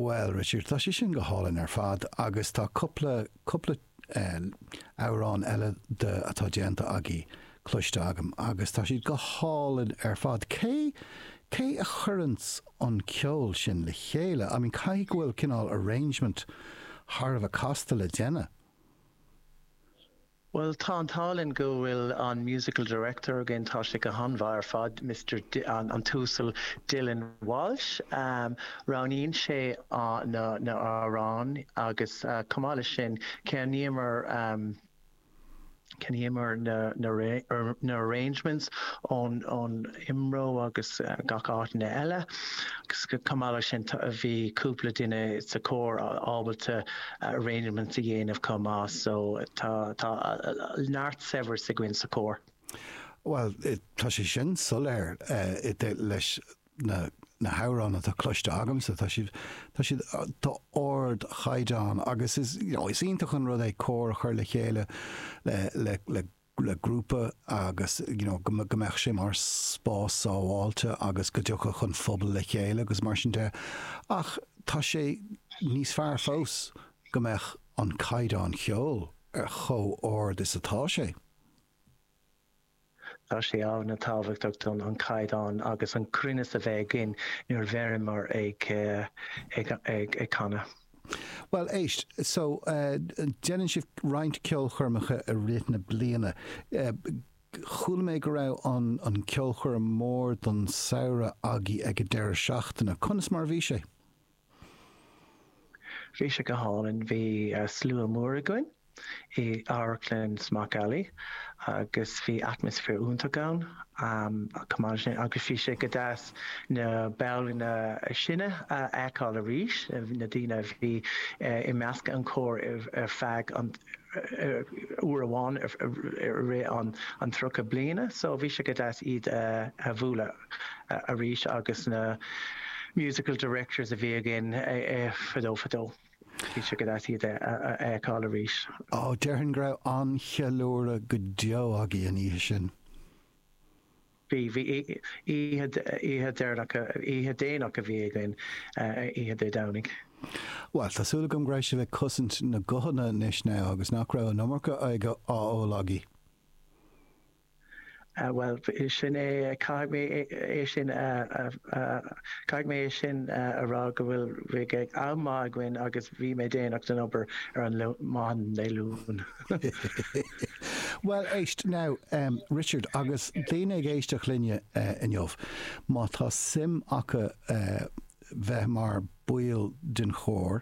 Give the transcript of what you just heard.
Bhuel, Richard, tá sé sin go hálainn ar fad agus tá cúpla, cúpla eh, amhrán eile de atá déanta agaibh cloiste agam agus tá siad go hálainn ar fad. Cé, cé a chuireann an ceol sin le chéile? I mean, caithfidh go bhfuil cineál arrangement thar a bheith casta le déanamh. Bhuel, tá an t-ádh linn go bhfuil an Musical Director againn, tá sé go han-mhaith ar fad, Mister, an tUasal Dylan Walsh. Roghnaíonn sé na hamhráin agus chomh maith leis sin, ceannaíomar, cheannaíomar na, na, arrangements ón, ón, Imro agus gach áiteanna eile. Chomh maith leis sin bhí cúpla duine sa Chór ábalta arrangements a dhéanamh chomh maith so tá neart saibhreas againn sa Chór. Bhuel, tá sé sin soiléir leis na hamhráin atá cloiste agamsa. Tá siad d'ardchaighdeán agus is iontach an rud é cór a chur le chéile le le grúpa agus you know go go mbeadh sé mar spás sábháilte agus go dtiocfadh an phobal le chéile agus mar sin de ach tá sé níos fearr fós go mbeadh an caighdeán cheoil ar chomh ard is atá sé. Tá sé ana tábhachtach dúinn an caighdeán agus an cruinneas a bheith againn nuair a bheimid ag ag ag canadh. Bhuel, éist, so, déanann sibh roinnt ceolchoirmeacha i rith na bliana. Chuala mé go raibh an ceolchoirm mór don samhradh agaibh ag an deireadh seachtaine. Conas mar a bhí sé? Bhí sé go hálainn. Bhí slua mór againn. i amharclann Smock Alley agus bhí atmaisféar iontach ann agus bhí sé go deas na ballanna sine a fheiceáil arís, na daoine a bhí i measc an chóir ar feadh an uair amháin i rith an tríocha bliana so bhí sé go deas iad a bhualadh arís agus na musical directors a bhí againn fadó fadó. Bhí sé go deas iad a fheiceáil arís. Ó, déarfainn go raibh an-cheiliúradh go deo agaibh an oíche sin. Bhí, bhí. Oíche, oíche dheireanach, oíche dhéanach a bhí againn, oíche Dé Domhnaigh. Bhuel, tá súil agam go raibh sibh ag cosaint na guthanna anois now agus nach raibh an iomarca oighir á ól agaibh. Bhuel, sin é, caithfidh mé é sin a, caithfidh mé é sin a rá go bhfuil, bhí am maith againn agus bhí mé déanach don obair ar an maidin Dé Luain. Bhuel, éist, now, um, Richard, agus daoine ag éisteacht linn uh, inniu, má tá suim acu uh, bheith mar bhall den chór,